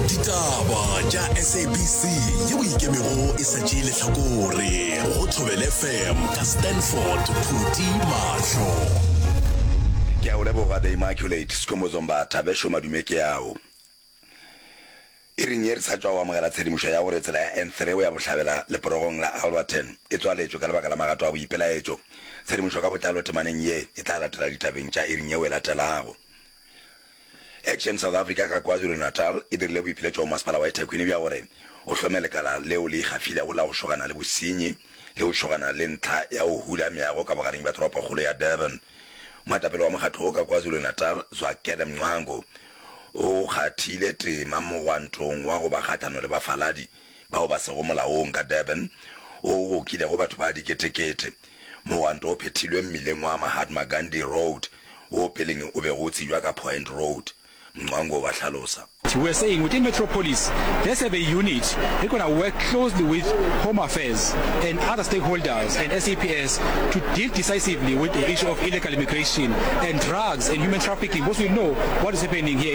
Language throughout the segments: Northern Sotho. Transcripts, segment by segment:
ditaba tša sabc ye o ikemego e sa tšee lehlakore go thobele fm ka stanford phuti mahlo ke a o leboga the immaculate sekomozombatha bešo madume ke ao e reng ye re sa tšwa o amogela tshedimošo ya gore tsela ya n3 o ya bohlabela leporogong la alberton e tswaletšwe ka lebaka la magato a boipelaetšo tshedimošo ka botlalo temaneng ye e tla latela ditabeng tša e reng yeo e latelago Action South Africa ka KwaZulu-Natal e dirile boipiletšo go Masepala wa eThekwini bja gore o hlome lekala leo le ikgafilego la go šogana le bosenyi le go šogana le ntlha ya go hula meago ka bogareng bja toropokgolo ya Durban. Moetapele wa mokgatlo wo ka KwaZulu-Natal, Zwakele Mncwango, o kgathile tema mogwantong wa go ba kgahlano le bafaladi. bao ba sego molaong ka Durban, woo go kilego batho ba diketekete. Mogwanto o phethilwe mmileng wa Mahatma Gandhi Road, woo peleng o bego o tsijwa ka Point Road, Mncwango ba hlalosa. He was saying, Within Metropolis, let's have a unit that gonna work closely with Home Affairs and other stakeholders and SAPS to deal decisively with the issue of illegal immigration and drugs and human trafficking because we know what is happening here in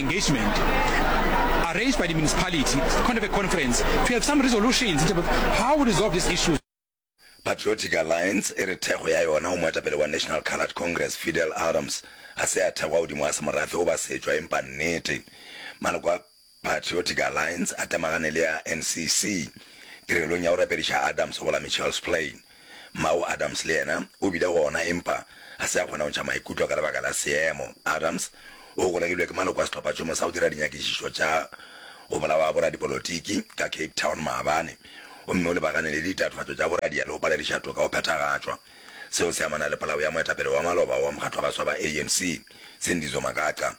engagement arranged by the municipality to conduct a conference to have some resolutions in terms of how we resolve these issues. Patriotic Alliance e re thekgo ya yona go moetapele wa National Coloured Congress, Fidel Adams, ga se ya thekgwa godimo ga semorafe goba setšwa empa nnete. Maloko a Patriotic Alliance a temagane le a NCC tirelong ya go rapediša Adams go la Mitchell's Plain. Mma'o Adams le yena o bile gona empa ga se a kgona go ntšha maikutlo ka lebaka la seemo. Adams o golegilwe ke maloko a sehlophatšhomo sa go dira dinyakišišo tša go bolawa ga boradipolotiki ka Cape Town maabane gomme o lebagane le ditatofatšo tša boradia le go palediša toka go phethagatšwa. Seo se amana le polao ya moetapele wa maloba wa mokgatlo wa baswa ba ANC, Sindizo Magaqa.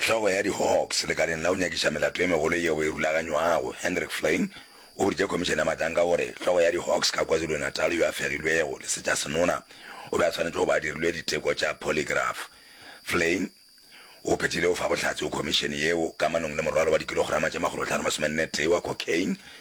Hlogo ya di-Hawks lekaleng la go nyakiša melato e megolo yeo e rulaganywago, Hendrik Flein, o boditše Khomišene ya Matanka gore hlogo ya di-Hawks ka KwaZulu-Natal yo a fegilwego lesetša-senona o be a swanetše go ba a dirilwe diteko tša polygraph. Flein o phethile go fa bohlatse go khomišene yeo kamanong le morwalo wa dikilograma tše makgolohlano masomenne-tee wa cocaine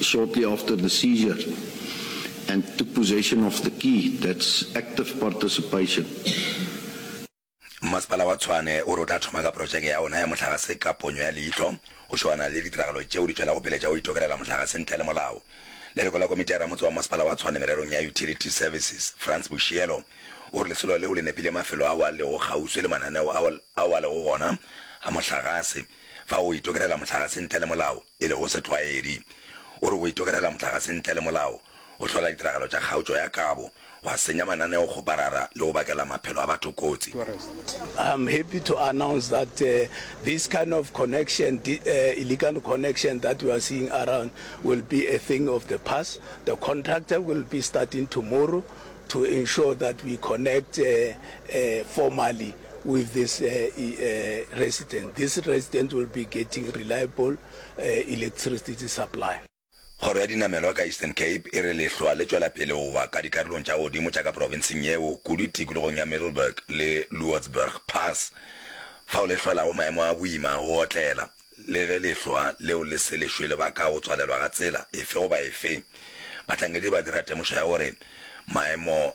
shortly after the seizure and took possession of the key, that's active participation. Mmasepala wa Tshwane o re o tla thoma ka porotšeke ya ona ya mohlagase ka ponyo ya leihlo go šoana le ditiragalo tšeo di tšwelago pele tša go itokelela mohlagase ntle le molao. Leloko la komiti ya ramotse wa Mmasepala wa Tshwane mererong ya Utility Services, Frans Boshielo, o re lesolo leo le nepile mafelo ao a lego kgauswi le mananeo ao a lego gona a mohlagase fa go itokelela mohlagase ntle le molao. e lego setlwaedi, o re o itokelela mohlagase ntle le molao, o hlola ditiragalo tša kgaotšo ya kabo, wa senya mananeo go parara le go bakela maphelo a batho kotsi. I am happy to announce that this kind of connection, illegal connection that we are seeing around will be a thing of the past. The contractor will be starting tomorrow to ensure that we connect formally. With this resident, this resident will be getting reliable electricity supply. Kgoro ya dinamelwa ka Eastern Cape e re lehlwa le tšwela pele go wa ka dikarolong tša godimo tša ka profenseng yeo, kudu tikologong ya Middelburg le Loordsburg Pass, fao le hlwelago maemo a boima a go otlela, le ge lehlwa leo le se le šwele ba ka go tswalelwa ga tsela efe goba efe. Bahlankedi ba dira temošo ya gore maemo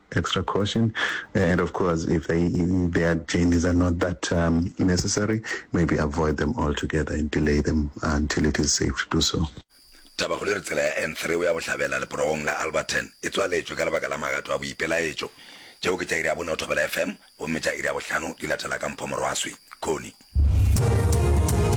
extra caution and of course if they, their journeys are not that um, necessary maybe avoid them altogether and delay them until it is safe to do so. Tabakgolo e re tsela ya N3 o ya bohlabela leporogong la Alberton e tswaletšwe ka lebaka la magato a boipelaetšo. Tšeo ke tša iri ya bone o thobela FM, gomme tša iri ya bohlano di latela ka mphomorwaswi. Connie.